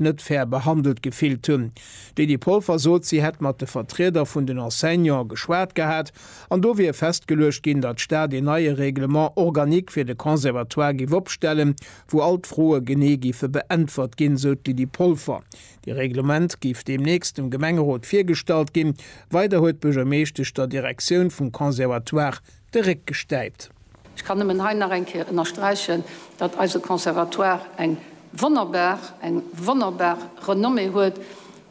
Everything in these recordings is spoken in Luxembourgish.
net fair behandelt gefillt hunn. D'Lydie Polfer sot, si hätt mat de Vertrieder vun den Enseignante geschwat gehat an do wier festgeluecht ginn, datt d'Stad een neie Règlement organique fir de Conservatoire géif opstellen, wou all d'Froe genee géife beäntwert ginn, esou d'Lydie Polfer. Dee Reglement géif deemnächst dem Gemengerot virgestallt ginn. Weider huet d'Buergermeeschtesch der Direktioun vum Conservatoire, de Réck gestäipt. Ech kann nëmmen hei nach eng Kéier ënnersträichen, datt eise Conservatoire eng wonnerbar, eng wonnerbar Renommée huet,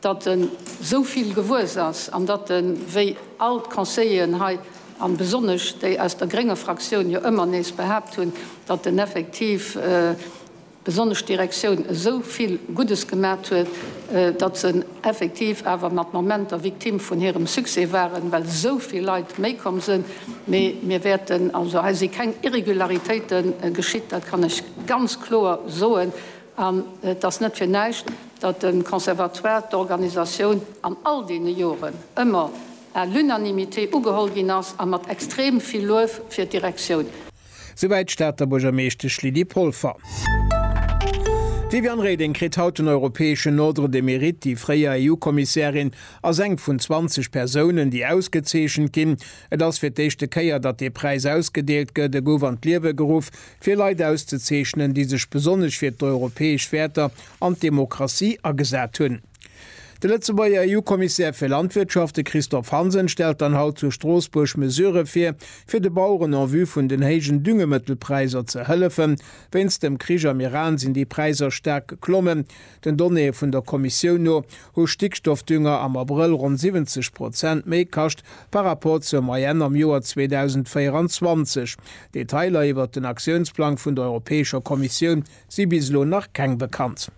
datt en esou vill gewuess ass an datt en, wéi all d'Conseilleren hei an besonnesch déi aus der grénger Fraktioun jo ëmmer nees behaapt hunn, datt en effektiv, besonnesch d'Direktioun esou vill Guddes gemat huet, datt se effektiv awer mat Momenter Victime vun hirem Succès waren, well esou vill Leit méi komm sinn. Mee mir wäerten, also hei si keng Irregularitéite geschitt, dat kann ech ganz kloer soen. An et ass net fir näischt, datt de Conservatoire, d'Organisatioun an all deene Joren ëmmer à l'unanimité ugeholl ginn ass a mat extrem vill Luef fir d'Direktioun. Souwäit d'Stater Buergermeeschtesch Lydie Polfer. D'Viviane Reding kritt haut den europäeschen Ordre de Mérite. Déi fréier EU-Kommissärin ass eng vun 20 Persounen, déi ausgezeechent ginn. Et ass fir d'éischte Kéier, datt dee Präis ausgedeelt gëtt. E gouf an d'Liewe geruff, fir Leit auszezeechnen, déi sech besonnesch fir d'europäesch Wäerter an d'Demokratie agesat hunn. De Lëtzebuerger EU-Kommissär fir Landwirtschaft, de Christophe Hansen, stellt dann haut zu Stroossbuerg Mesurë vir, fir de Baueren en vue vun den héijen Düngemëttelpräisser ze hëllefen. Wéinst dem Krich am Iran sinn déi Präisser staark geklommen. Den Donnéeë vun der Kommissioun no hu Stickstoffdünger am Abrëll ronn 70 Prozent méi kascht par Rapport zur Moyenne am Joer 2024. Detailer iwwert den Aktiounsplang vun der Europäescher Kommissioun si bis elo nach keng bekannt.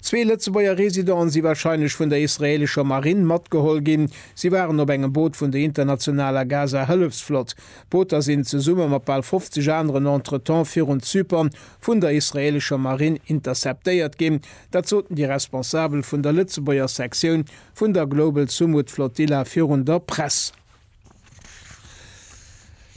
Zwee Lëtzebuerger Residenten si warscheinlech vun der israeelescher Marinn matgeholl ginn. Si waren op engem Boot vun der internationaler Gaza-Hëllefsflott. D'Booter sinn zesumme mat bal 50 aneren entretemps virun Zypern vun der israeelescher Marinn interceptéiert ginn. Dat soten déi Responsabel vun der Lëtzebuerger Sektioun vun der Global Sumud Flotilla virun der Press.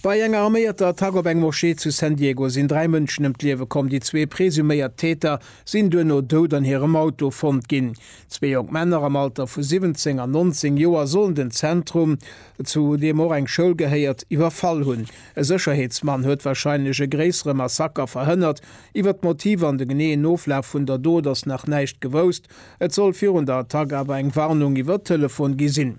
Bei enger arméierter Attack op eng Moschee zu San Diego sinn dräi Mënschen ëm d'Liewe komm. Déi zwee presuméiert Täter sinn duerno dout an hirem Auto fonnt ginn. Zwee jonk Männer am Alter vu 17 an 19 Joer sollen den Zentrum, zu deem och eng Schoul gehéiert, iwwerfall hunn. E Sécherheetsmann huet warscheinlech e gréissere Massaker verhënnert. Iwwer d'Motiver an de geneeën Oflaf vun der Dot ass nach näischt gewousst. Et soll virun der Attack awer eng Warnung iwwer Telefon gi sinn.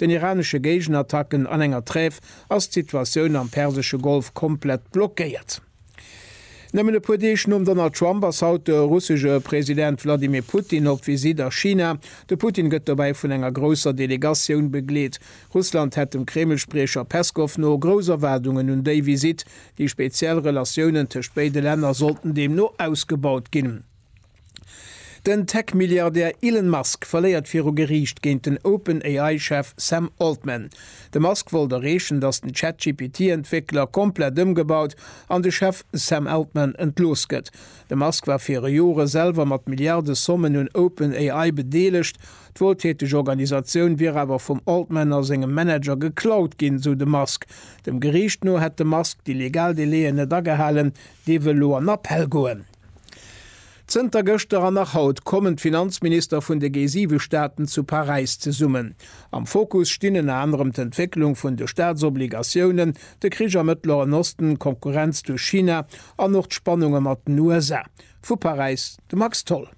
den iranesche Géigenattacken an enger Trêve ass d'Situatioun am persesche Golf komplett blockéiert. Nëmmen e puer Deeg nom Donald Trump ass haut de russesche President Wladimir Putin op Visitt a China. De Putin gëtt dobäi vun enger grousser Delegatioun begleet. Russland hätt dem Kreml-Spriecher Peskow no grouss Erwaardungen un déi Visitt. Déi speziell Relatiounen tëscht béide Länner sollten deemno ausgebaut ginn. Den Tech-Milliardär Elon Musk verléiert viru Geriicht géint den OpenAI-Chef Sam Altman. De Musk wollt erreechen, datt den ChatGPT-Entwéckler komplett ëmgebaut an de Chef Sam Altman entlooss gëtt. De Musk war viru Jore selwer mat Milliardesommen un OpenAI bedeelegt. D'wueltäteg Organisatioun wier awer vum Altman a sengem Manager geklaut ginn, sou de Musk. Dem Geriicht no hätt de Musk déi legal Délaië net agehalen. Dee wëll elo an Appell goen. Zënter gëschter an nach haut kommen d'Finanzminister vun de G7 Staaten zu Paräis zesummen. Am Fokus stinn ënner anerem d'Entwécklung vun de Staatsobligatiounen, de Krich am Mëttleren Osten, d'Konkurrenz duerch China an och d'Spannunge mat den USA. Vu Paräis de Max Tholl.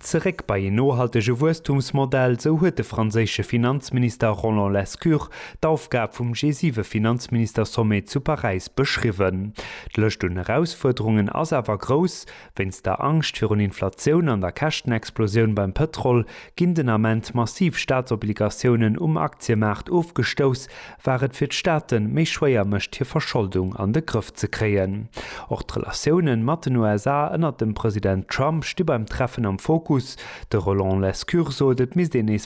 Zeréck bei een nohaltege Wuesstumsmodell, sou huet de franséische Finanzminister Roland Lescure d'Aufgab vum G7-Finanzministersommet zu Paräis beschriwwen. D'Lëscht un Erausfuerderungen ass awer grouss. Wéinst der Angscht virun Inflatioun an der Käschtenexplosioun beim Pëtrol ginn den Ament massiv Staatsobligatiounen um Aktiemaart ofgestouss, war et fir d'Staate méi schwéier mécht hir Verscholdung an de Grëff ze kréien. Och d'Relatioune mat den USA ënnert dem President Trump sti beim Treffen am Fokus. De Roland Lescure sot, et misst een nees